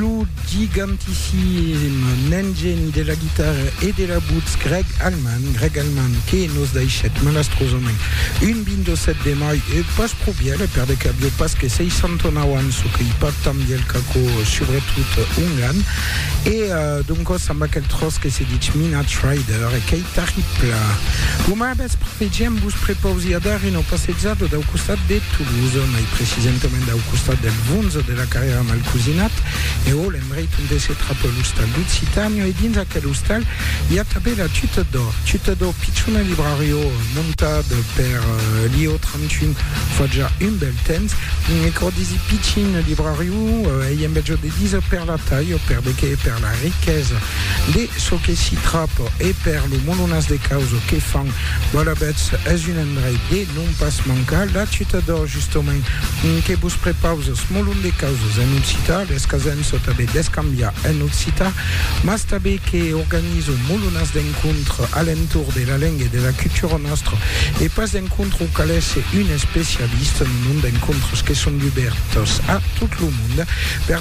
Lo gigantissim nen geni de la guitarra e de la butz Greg Allman, Greg Allman que nos daishèt malastrosament un 27 de mai e pas pro bièlh per de que avió pas que 69 ans, çò qu'ei pas tan bièlh qu'aquò, subretot ongan. E doncòs amb aquel tròç que se ditz Midnight Rider e qu'ei Terrible. Lo mai vèspre vegem vos prepausi a dar una passejada dau costat de Toulouse, mai precisentament dau costat del Vunz de la Carrièra Malcosinat, e o l'endreit onte se trapa l'ostal Lucitanio, e dins aquel ostal i a tanben la Tuta d'Or. Tuta d'Or, pichona librarió montat per Lio 31 fa ja un bèl temps, e quò disi pichin librarió ei en bèja de díser per la talha, per de qué? Per la riquesa. De çò que s'i trap e per lo molonàs de caus que fan, Boalabètz es un endreit de non pas mancar. La ciutat d'Or, justament, que vos prepaus es molon de causes en occitan, les casèm çò tanben d'escambiar en occitan, mas tanben que organizo molonàs d'encontre a l'entorn de la lenga e de la cultura nòstra, e pas d'encontre au qu'alèsse un especialista, non, non, d'encontres que son dubèrtes a tot lo monde. Per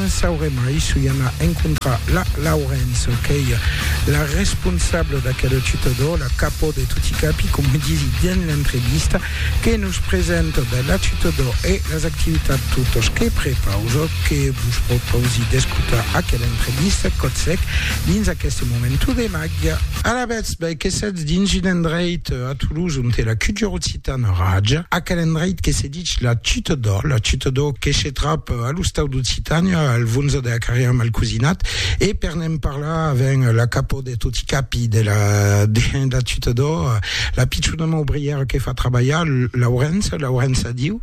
Sauré mai s'u i ana encontrar la Laurence qu'ei la responsable d'aquel tutodor, la capò de toti capi, coma disi dens l'entrevista, que nos presenta ben la tutodor e las activitats totas que prepausa, que vos propausi d'escotar aquela entrevista còth sec dins aqueste momento de màgia. Alavetz, ben que setz dins un endreit a Toulouse onte la cultura occitana raja, aquel endreit que se Ditz la chuta d'ò, la chuta d'ò que se trap a l'ostau d'Occitània, al Vonza de la Carrièra Malcosinat, e per ne'n parlar avèm la capò de toti capi de la de la chuta d'ò, la pichona maubrièra que fa trabalhar, Laurença, Laurença, adiu.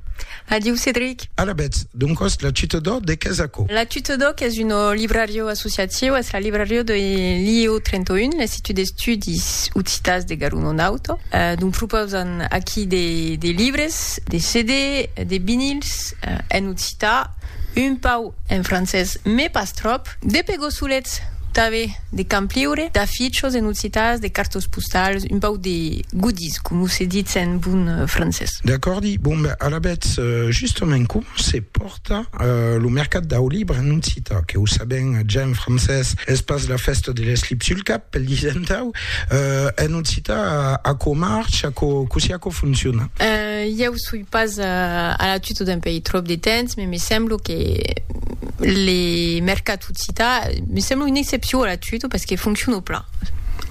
Adiu, Cedric. Alabètz, doncòs la chuta d'ò de qu'es aquò? La chuta d'ò qu'es un librariu associatiu, es la librariu de l'IEO 31, l'Institut d'Estudis Occitans de Garun-Onauto, dont propausan aquí de de libres, discs de CD, de vinils, en occità, un pau en francés me pas tròp, de pegosulets tave de campliure, d'afichos en occitàs, de cartos postals, un pau de goodies coma se ditz en bon francés. D'acòrdi, bon ben alavetz, justament com se pòrt. Cita, Lo mercat dau libre, non cita, que o sabèm ja en francés, es pas la fèsta de l'eslip sul cap, pel disentau, e non cita aquò marcha, cossí aquò fonciona. Ieu soi pas a la tuta d'un país tròp de temps, me me semblo que le mercat o cita, me semblo una excepcion a la tuta, parce que fonciona plan.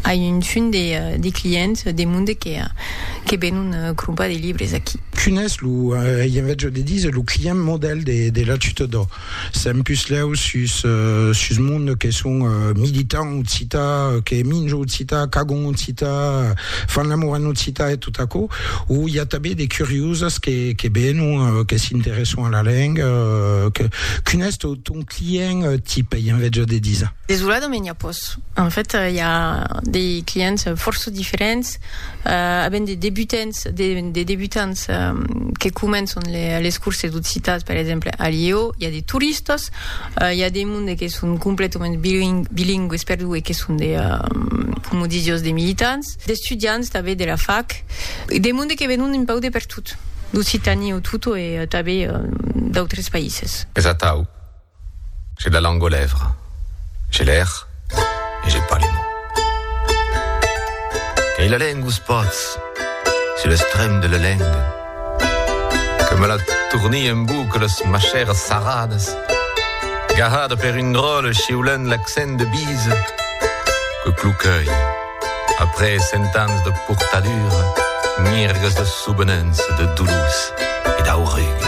Ai un fum de clients de monde que venon crompar de libres aquí. Qu'unés lo, ei en vètge de díser lo client modèl de la tutodò. Sèm puslèu sus, sus monde que son militant occità, que minjo occità, cagon occità, fan l'amor en occità e tot aquò, o i a tabé de curioses que, que venon, que s'interesson a la lenga, que, qu'unés to, ton client tip, ei en vètge de díser? Desoladament i a pòs. En fait, i a de clients fòrça diferents. avèm de debutants, de, de debutants que començan le, les curses d'occitan, per exemple, a Lió, i a de turistas, i a de monde que son completament biling, bilingües perdó, e que son de, coma disi jos, de militants, d'estudiants tanben de la fac, de monde que venon un pauc de pertot, d'Occitània o tot, e tanben d'autres païses. Es atau. J'ai la langue aux lèvres, j'ai l'air et j'ai pas les mots. Qu'ai la lengue aux pots, sur l'estrem de la lengue, que me la tournie en boucles machères sarrades, gahades per un dròlle chiulent l'accent de bise, que cloquei, après cent ans de portadure, mirgues de soubenences, de doulous et d'aurugues.